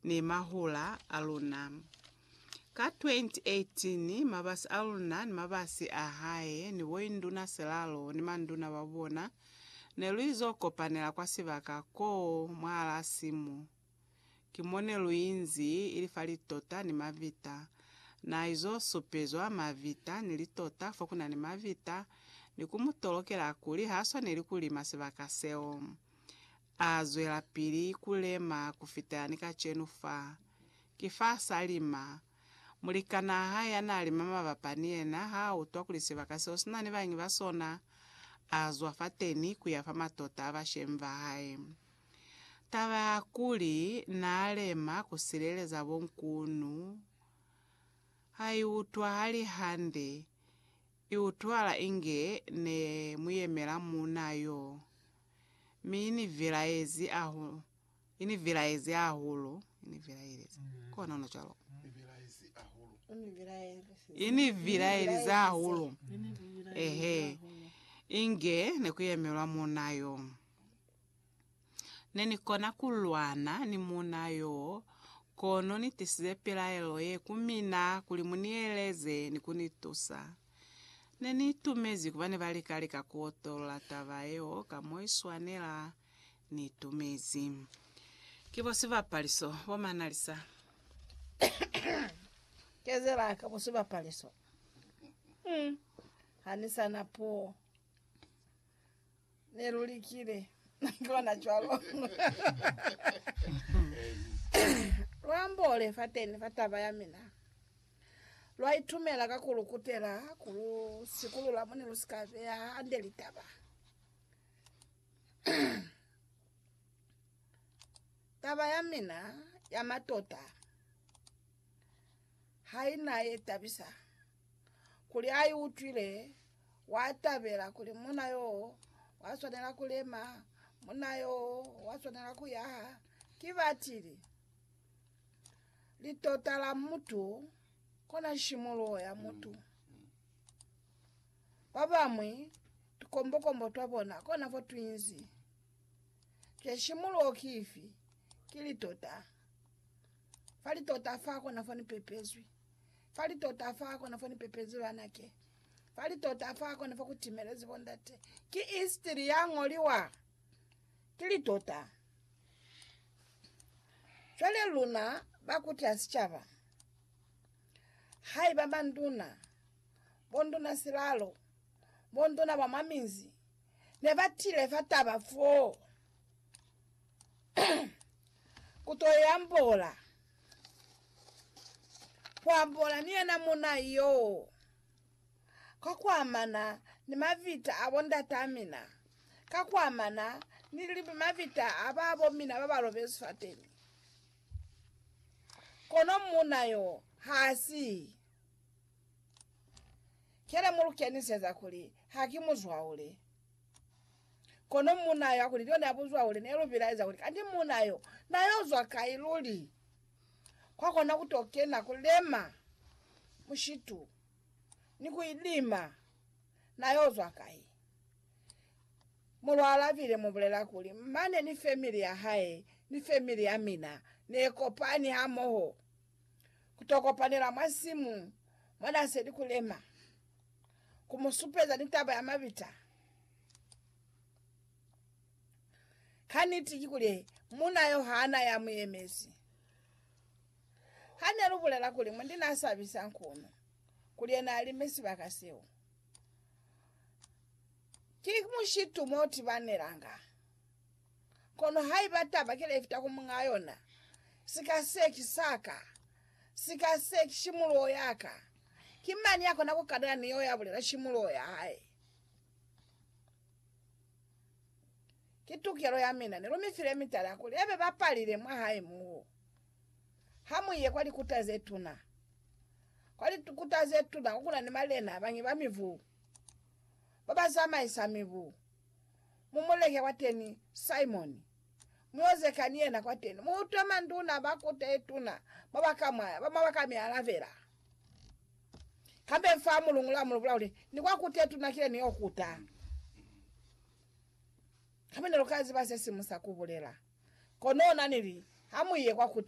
ni mahula a luna. Ka 2018, mabasi a luna ni mabasi a hae ni boinduna silalo ni manduna ba bona ne lu izo kopanela kwa sibaka koo mwahalaa simu. Ki mo ne lu inzi, ili fa litota ni mavita. Na izo supezwa mavita ni litota fo ku na ni mavita, ni ku mu tolokela kuli ha swaneli ku lima sibaka seo. A zwelapili ku lema ku fita ni kacenu fa. Ki fa sa lima. Mulikanaa hae ya naa lima mabapa ni yena ha a utwa kuli sibaka seo si na ni bañi ba sona, a zwa fateni ku ya fa matota a bashemi ba hae. Taba ya kuli naa lema ku sileleza bonkunu ha i utwahali hande, I utwala inge ne mu yemela muuna yo, mi i ni vilaezi hahulu. I ni vilaezi hahulu. I ni vilaelize. Ko ona ona cwalo. I ni vilaelize hahulu. Ehe. Inge ne ku yemelwa muuna yo. Ne ni kona ku lwana ni muuna yoo, kono ni tisize pilaelo ye ku mina kuli mu ni eleze ni ku ni tusa. Ne ni itumezi kuba ne ba lika lika ku otolola taba yeo ka mo i swanela. Ni itumezi. Ki bo sibapaliso bo manalisa. Kezela ka bo sibapaliso. Hum. Ha ni sa na puo. Ne lu likile ku lona cwalo. Lwa ambole fateni fa taba ya mina. Lwa itumela ka ku lu kutela ku lu sikulula mo ne lu si ka beya hande litaba. Taba ya mina ya matota ha i na ye tabisa. kuli a i utwile, wa tabela kuli muna yo wa swanela ku lema, muna yo wa swanela ku yaha. Ki batili litota la mutu kona nshimuluho ya mutu. Ba bamwi tukombokombo twa bona kona fo twinzi. Je nshimuluho ki ifi? Ki litota. Fa litota fa kona fo ni pepezwi. Fa litota fa kona fo ni pepezi lwa nake. Fa litota fa kona fo ku timelezi bo ndate. Ki istiri ya ngoliwa ki litota. Cwale luna ba kuta sicaba, haiba manduna, bonduna silalo, bonduna ba mwa minzi, ne ba tile fa taba foo, ku to yambola. Kuambola ni yena muna yoo ka kuamana ni mavita a bo ndatamina, ka kuamana ni mavita a babo mina ba ba lobezi fateni. Kono muna yoo ha si ke le mu lu keniseza kuli ha ki muzwaule. Kono muuna yo, kuli, Leo ne a buzwa kuli, Ne lu bilaeza kuli, Kanti muuna yo, na yo zwa kai luli? Kwa kona ku to kena, ku lema mushitu, ni ku ilima, na yo zwa kai? Mulwa Laville mu bulela kuli, Mane ni family ya hae, ni family ya mina, ne kopani hamoho. Ku to kopanela mwa nsimu mwa n'a seli ku lema, ku mu supeza ni taba ya mabita. Ka niti kikuli muuna yo ha na ya mu yemezi. Ha ne lu bulela kuli mundi n'a sabisa nkunu kuli yena a lime sibaka seo, ki mushitu mo tibanelanga. Kono haiba taba ki lefita ku muñaa yona, Sika se ki sa ka, sika se ki shimuloho ya ka, ki mañi ya kona ku kadana ni yeo ya bulela shimuloho ya hae? Ki tukelo ya mina. Ne lu mi file mitala kuli ya be bapalile mwa hae moo. Ha mu ye kwa likuta ze tuna. Kwa likuta ze tuna ko ku na ni malena a bañwi ba mibu, ba ba zamaisa mibu. mu mulehe kwateni Simoni, muozeka ni yena kwateni, muutwe manduna ba kuta yetuna mo bakamwaya, ba mabaka mialabela. Kambe mfaa mulungula mulubula kuli, Ni kwa kuta yetuna kile niyo kuta. Kambe nelukaziba sesimu sa kubulela. Kono nanili, Hamuye kwa kuta